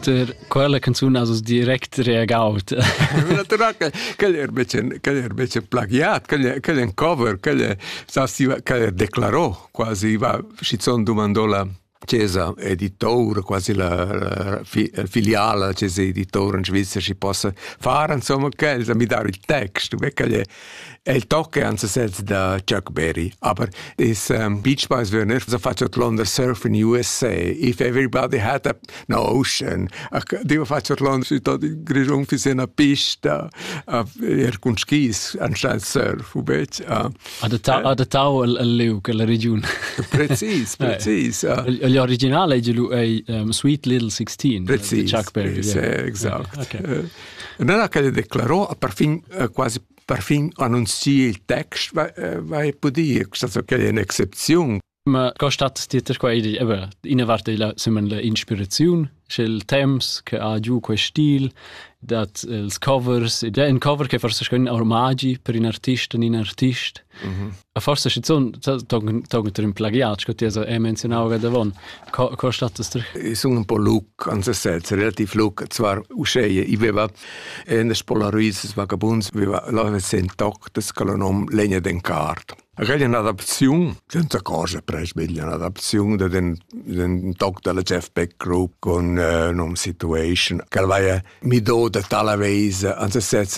Per quella canzun has direct reagaut. Quel er becen quel er becen plagiat, quel quel en cover, quel quel er declarò quasi va schizoon dumandò la Cesa editor, quasi la filiala la Cesa editor in Svizzera si possa fare insomma quel mi dar il text, quel è El tocca en sesez da Chuck Berry, aber this um, Beach Boys Werner so fatg ortlonder Surf in USA. If everybody had a an ocean. A deva fatg ortlonder sü tot il Grischun fi se na pista a er cun skis anscheinend surf, ubet. Adattau al liug, alla regiun. Precis, precis. Gli originale è Sweet Little 16. Precis. Chuck Berry. Exact. Nella che declarò a perfin quasi perfin annunzier il text vai pudi questa che è un'excepzione Ma costat ti te qua edi aber ina parte la sumen la inspiraziun sch'el temps che ha giù quel stil dat els covers ed è un cover che forse schon ormagi per in artist in artist A forse schizun togent in plagiat sco ti hai menzionau davon co co status Ich sun un po luc an se sez relativ luc zwar uscheie i veva en Polaroids vagabunds veva laves en toc des col nom legna den cart Reglia un'adapziun, senza cosa presbiglia un'adapziun de den, den toc della Jeff Beck Group con uh, nom Situation, che vaia mi do de tala veise an se sez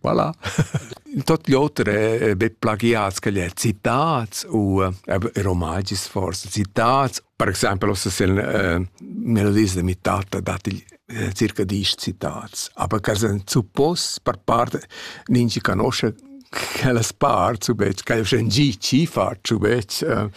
Voilà. Tot l'oter è be plagiats che le citats u äh, romagis forse citats. Per esempio, ossa se äh, nella lista mi tatta dati äh, circa dieci citats, aber che sen suppos per parte nin ci conosce che las part subet, che io sen ci ci faccio bet. Äh,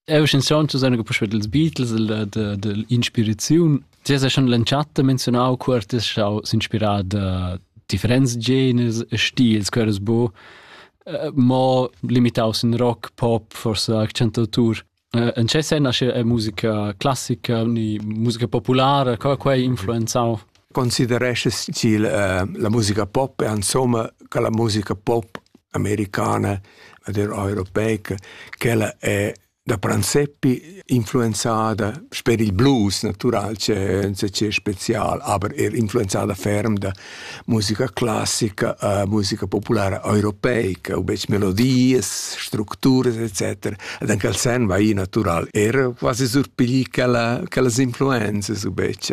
Eu schanzond zu seine Pusche dels Beatles, de, de, de Inspiraziun. Ti hast ja schon l'entschatta menzionau, quer ti hast inspirà da differents genres e stils, quer es bu, uh, mo limitaus in rock, pop, forse accentautur. Uh, en ce sen nasce musica classica, ni musica populara, co quai influenzau consideresces til uh, la musica pop e insomma che la musica pop americana der europeica quella è da Pranzeppi influenzada per il blues natural c'è c'è special aber er influenzada ferm da musica classica uh, musica popolare europeica o bec melodie strutture etc ed anche il sen va in natural era quasi surpigli che la che las influenze su bec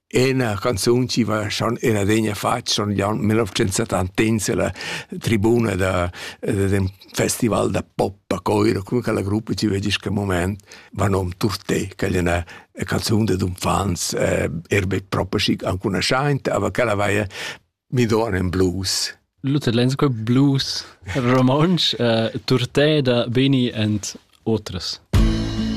Ena canzun chi va schon in adegna fatg son Glion 1971 ella tribuna da d'ün festival da pop a Coiro, cun quella gruppa chi vedi sta moment, va nom Turté, che è üna canzun dad unfants, eh, er be propa schic ancunaschaint, aber quella vaia mi don in blues. Luther Lensko blues romontsch, eh, Turté da Beni and otras.